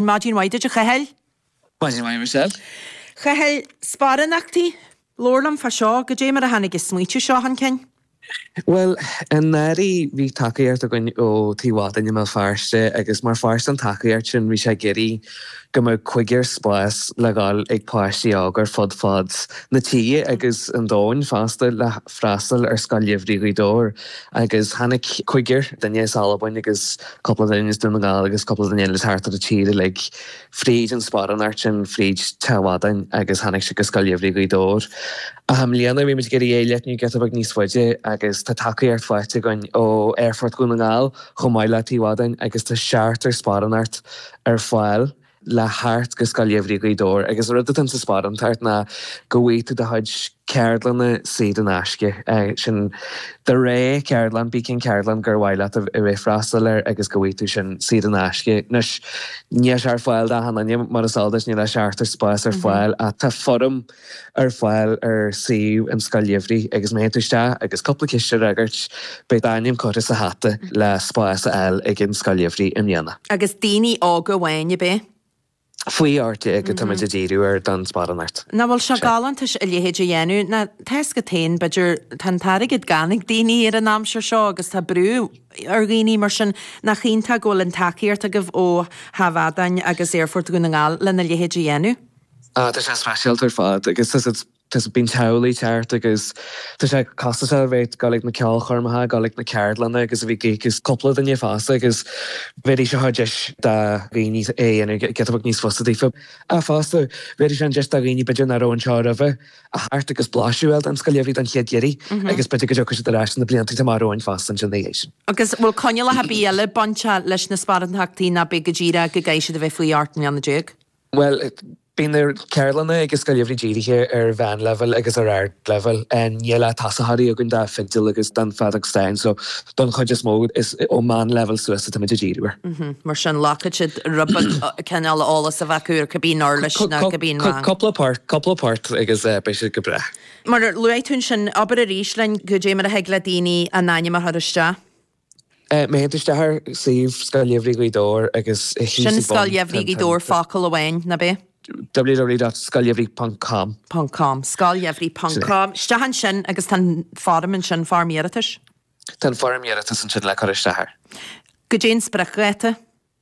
Maidin mhaith duit, a Chathail. Maidin mhaith, Michelle. Chathail, sparánachtaí? Labhair liom fá seo. Goidé mar a tháinig an smaoitiú seo chun cinn? Bhuel, i ndáiríre bhí tacaíocht againn ó Tigh Mhadáin i mBéal Feirste agus mar pháirt den tacaíocht sin bhí sé ag iarraidh go mbeadh cúigear spás le ghabháil ag páistí óga ar fud fad na tíre agus an domhain fosta le freastal ar Scoil Gheimhridh Ghaoth Dobhair agus tháinig cúigear, duine as Albain agus cúpla duine as Dún na nGall agus cúpla duine eile thart ar an tír uilig fríd an sparánacht sin fríd Tigh Mhadáin agus tháinig siad go Scoil Gheimhridh Ghaoth Dobhair. Ach i mbliana bhí muid ag iarraidh é a leathnú giota beag níos faide agus tá tacaíocht faighte againn ó Aerfort Dhún na nGall chomh maith le Tigh Mhadáin agus tá seachtar sparánacht ar fáil le theacht go Scoil Gheimhridh Ghaoth Dobhair agus an rud atá insa sparánacht ná go bhfaighidh tú do chuid ceardlanna saor in aisce. Sin do rogha ceardlann, cibé cén ceardlann gur mhaith leat a bheith ag freastal air agus go bhfaighidh tú sin saor in aisce. Anois, níl sé ar fáil d'achan duine mar is eol duit, níl ach seachtar spás ar fáil ach tá foirm, ar fáil ar suíomh an Scoil Gheimhridh agus má théann tú isteach agus cúpla ceist a fhreagairt, beidh d'ainm curtha sa hata le spás a fháil ag an Scoil Gheimhridh i mbliana. Agus daoine óga amháin, ab é? Faoi 18 atáimid ag díriú ar don sparánacht. Nach bhfuil sé galánta a leithéid a dhéanamh? Mar tá a fhios agat féin, b'fhéidir, tá an t-airgead gann ag daoine ar an aimsir seo agus tá brú ar dhaoine, mar sin nach iontach go bhfuil an tacaíocht agaibh ó Thigh Mhadáin agus Aerfort Dhún na nGall lena leithéid a dhéanamh? Tá sé speisialta ar fad agus bíonn teaghlaigh ag teacht agus tá sé costasach a bheith ag dul ag na ceolchoirmeacha, ag dul ag na ceardlanna agus a bheith ag gigs. Cúpla duine fásta agus bheir sé deis do dhaoine é a dhéanamh giota beag níos fusa daofa. Ach fosta, bheir sé an deis do dhaoine b'fhéidir nach raibh anseo roimhe a theacht agus blaiseadh a fháil den Scoil Gheimhridh don chéad iarraidh agus b'fhéidir go dtiocfaidh siad ar ais na blianta amach romhainn fosta ansin ina dhiaidh sin. Agus an bhfuil coinníollacha ar bith eile bainteach leis na sparánachtaí nó ab é go díreach go gcaithfidh siad a bheith faoi 18 mbliana? Bhuel, bíonn na ceardlanna ag an Scoil Gheimhridh dírithe ar mheánleibhéal agus ar ardleibhéal. Níl ach tosaitheoirí againn don fhidil agus don fheadóg stáin so don chuid is mó is ón meánleibhéal suas atáimid a' díriú air. Mar sin ghlacfadh sé rud beag cineál eolas a bheith acu ar cibé uirlis nó cibé rang. Cúpla port, cúpla port agus beidh siad go breá. Mar a luaigh tú ansin, abair arís linn goidé mar a thig le daoine a n-ainm a chur isteach. Má théann tú isteach ar suíomh Scoil Gheimhridh Ghaoth Dobhair agus thit sí bun. Sin Scoil Gheimhridh Ghaoth Dobhair, focal amháin, ab é? www.scoilgheimhridh.com..com, scoilgheimhridh.com. Isteach ansin agus tá an foirm ansin, foirm iarratais? Tá an foirm iarratais ansin le cur isteach air. Goidé an spriocdháta?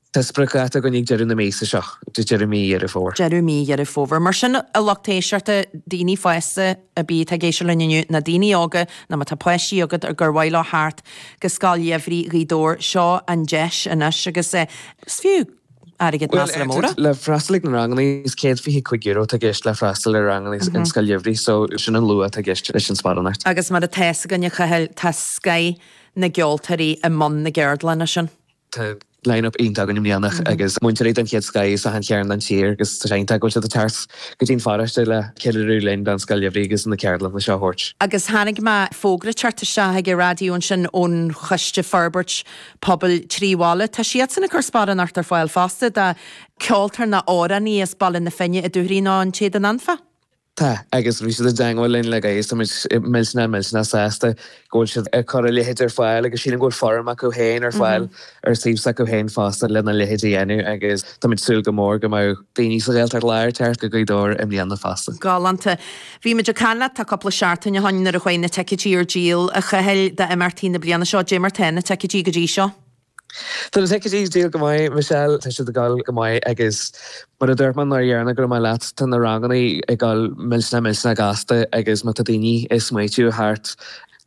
Tá spriocdháta againn ag deireadh na míosa seo, deireadh mí Dheireadh Fómhair. Deireadh mí Dheireadh Fómhair. Mar sin, a lucht éisteachta, daoine fásta ar bith atá ag éisteacht linn inniu, nó daoine óga, nó má tá páistí agat ar gur mhaith leo theacht go Scoil Gheimhridh Ghaoth Dobhair, seo an deis anois agus is fiú airgead measartha mór é. Le freastal ag na ranganna, is €125 atá i gceist le freastal ar ranganna an Scoil Gheimhridh so sin an luach atá i gceist leis an sparánacht. Agus mar atá fhios againn, a Chathail, tá scoth na gceoltóirí i mbun na gceardlanna sin. Tá line-up iontach againn i mbliana agus múinteoirí den chéad scoth as achan chearn den tír agus tá sé iontach go bhfuil siad ag teacht go dtí'n pharóiste le ceiliúradh linn don Scoil Gheimhridh agus na ceardlanna seo a thabhairt. Agus chonaic mé fógra ag teacht isteach chuig an raidió ansin ón choiste forbairt pobail trí bhaile. Tá siadsan ag cur sparánacht ar fáil fosta do ceoltóir nó amhránaí as Baile na Finne, an Dúchoraidh nó an tÉadan Anfach. Tá, agus bhí siad i dteangmháil linne agus táimid millteanach, millteanach sásta go bhfuil siad ag cur a leithéid ar fáil agus sílim go bhfuil foirm acu féin ar fáil ar suíomh s'acu féin fosta lena leithéid a dhéanamh agus táimid ag súil go mór go mbeidh daoine sa Ghaeltacht Láir teacht go Gaoth Dobhair i mbliana fosta. Galánta. Bhí muid ag caint leat tá cúpla seachtain o shoin nuair a chuaigh na ticeidí ar díol, a Chathail, d'imeachtaí na bliana seo. Dé mar tá na ticeidí go dtí seo? Tá na ticeidí ag díol go maith, Michelle. Tá siad ag dul go maith agus mar a dúirt mé an uair dheireanach go raibh mé leat, tá na ranganna ag dul millteanach millteanach gasta agus má tá daoine ag smaoitiú theacht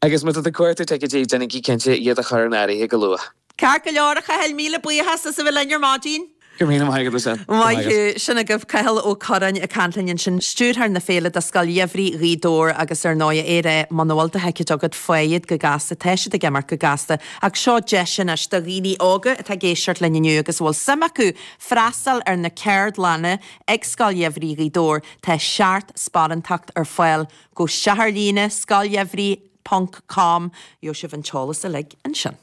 agus má tá tú ag cuartú ticeidí, déanaigí cinnte iad a chur in áirithe go luath. Ceart go leor, a Chathail, míle buíochas as a bheith linn ar maidin. Go míle maith agat, Rosann. Maith thú. Sin agaibh Cathal Ó Curráin ag caint linn ansin, stiúrthóir na féile do Scoil Gheimhridh Ghaoth Dobhair agus ar ndóigh é ré muna bhfuil do thicéid agat faigh iad go gasta, tá siad ag imeacht go gasta ach seo deis anois do dhaoine óga atá ag éisteacht linn inniu agus a bhfuil suim acu freastal ar na ceardlanna ag Scoil Gheimhridh Ghaoth Dobhair, tá seacht sparántacht ar fáil agus ar líne, scoilgheimhridh ponc com, gheobh sibh an t-eolas uilig ansin.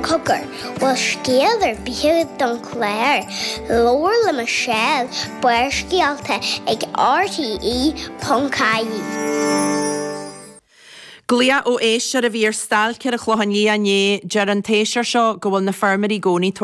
Cogar, bhfuil scéal ar bith don chlár. Labhair le Michelle, Barrscéalta ag RTÉ.ie. Glao ó éisteoir a bhí ar stailc ar an Chlochán Liath inné. Deir an t-éisteoir seo go bhfuil na feirmeoirí i gcónaí.